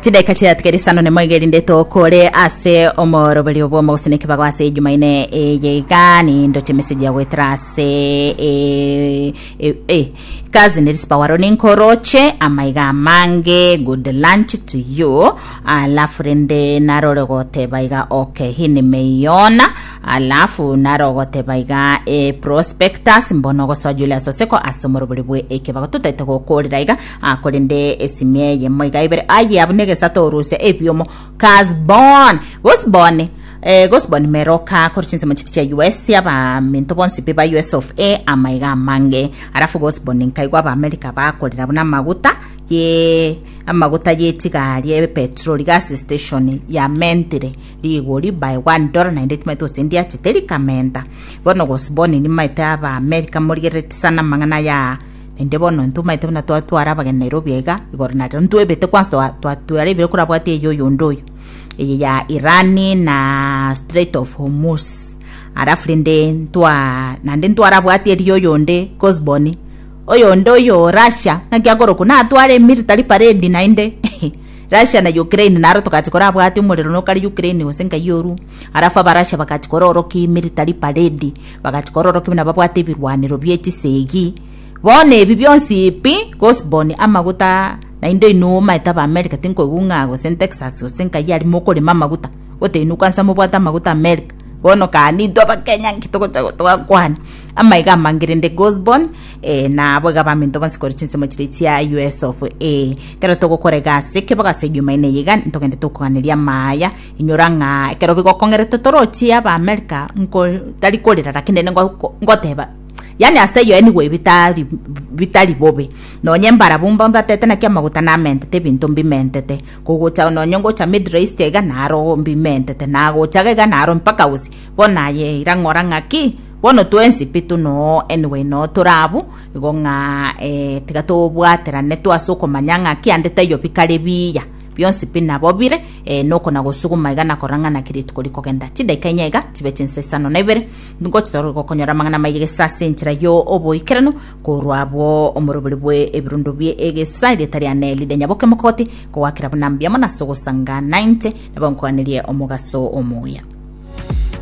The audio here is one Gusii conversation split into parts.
Chidaika chiatigere isano nemo iga erinde tokore ase omoroberio bw'omogosini kibago ase ejumaine eye iga nindo chimeseji ya goetera ase eh, eh, eh. kazi neri sipawaro ninkoroche amaiga amange good lunch to you alafu rende narore goteba iga okay hii nimeiona alafu naro goteba iga e prospectus mbono gosoa Julius Oseko ase omorobori bwe ekebago totaete gokorera iga Ah, korende esimia eye moiga ibere aye abu negesato orusia ebiomo kasbon gosboni eh, gosboni meroka kore chinsemo chiria chia us abaminto bonsi pi ba us of a amaiga amange arafu gosboni nkaigwa abaamerika bakorera buna amaguta ye amaguta yetigari epetroli gas station ya mentire rigori by one dollar naende timaite osendiachete rikamenta bono gosboni nimaite abaamerika morigerereti sana amang'ana ya Naende bono intwe omanyete buna twatwara abageni Nairobi aiga, igoro na rirorio ntwebete kwansa twa- twa- tware ebiro korabwate eye oyo onde oyo, eye ya Iran na strait of Hormuz, alafu rende ntwa naende ntwarabwate eria oyo onde Cosborn, oyo onde oyo Russia, ng'aki akore okwo natware military parade naende Russia na Ukraine naro togachia korabwate omorero nokare Ukraine gose nkai orue. Arafu Abarasha bagachia kororokia emerita ri'paredi, bagachia kororokia buna babwate ebirwanero bie chisegi. Bono ebi bionsi pi, Cosborn, amaguta, naende inwe omaete ab'America tinkoigwa ng'a gose Texas gose nkayi aria mokorema amaguta, goteba inwe kwansa mobwate amaguta America. Bono kani intwe Abakenya nki togocha gotogakwana? Amaiga amange rende Cosborn, eh, na abo iga baminto bonsi korwa chinsemo chiria chia US of A. Ekero togokora egasi, kebagaso egeomaene eye iga, ntogende tokoganeria amaya, Inyora ng'a ekero bigokong'erete torochie Abaamerika nko tari korera naki nere ngo- ngoteba yaani ase taiyo anyway bitari bitari bobe nonye mbarabwo mba mbatete naki amaguta namentete ebinto mbimentete kogocha nonye ngocha middle east iga naro mbimentete nagocha iga naro mpaka gose bono aye ira ng'ora ng'aki bono twensi pi tunoo anyway noo tore abwo igo ng'a tiga tobwaterane twase okomanya ng'aki ande taiyo bikare biya. Bionsi pi nabo bire eh, noko na gosuguma iga na korang'ana ki rituko rikogenda. Chidaika inye iga chibe chinsa isano na ibere, nigo chitore gokonyora amang'ana maiye gesa ase enchera yo oboikeranu korwa abwo omorobori bwe ebirundo bie egesa erieta ria Neli rinyaboke mogoti, kogwakera buna mbiamo na ase ogosanga nainche, nabo nkoganerie omogaso omoya.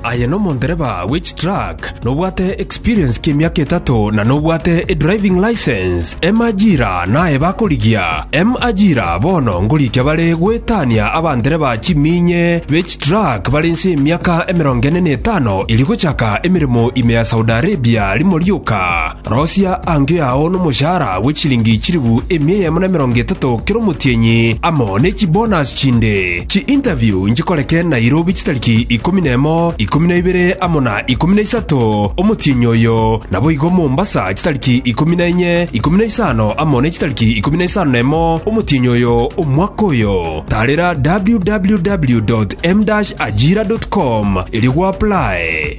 Aye nomondereba bwe chitruck, nobwate experience ki'emiaka etato na nobwate edriving license. M Ajira naye bakorigia. M Ajira bono ngorikia bare goetania abandereba chiminye be chitruck bare inse y'emiaka emerongo ene na etano eri gochaka emeremo ime ya Saudi Arabia rimo rioka. Rosia ango yao nomoshahara bwe chiringi chilifu emia eyemo na emerongo etato kera omotienyi, amo ne chibonus chinde. Chiinterview nchikoreke Nairobi chitariki ikomi na emo, ikomi na ibere amo na ikomi na isato omotienyi oyo, naboigo Mombasa chitariki ikomi na enye, ikomi na isano amo ne chitariki ikomi na isano na emo omotienyi oyo omwaka oyo. Tarera www.m-ajira.com erio gwaplae.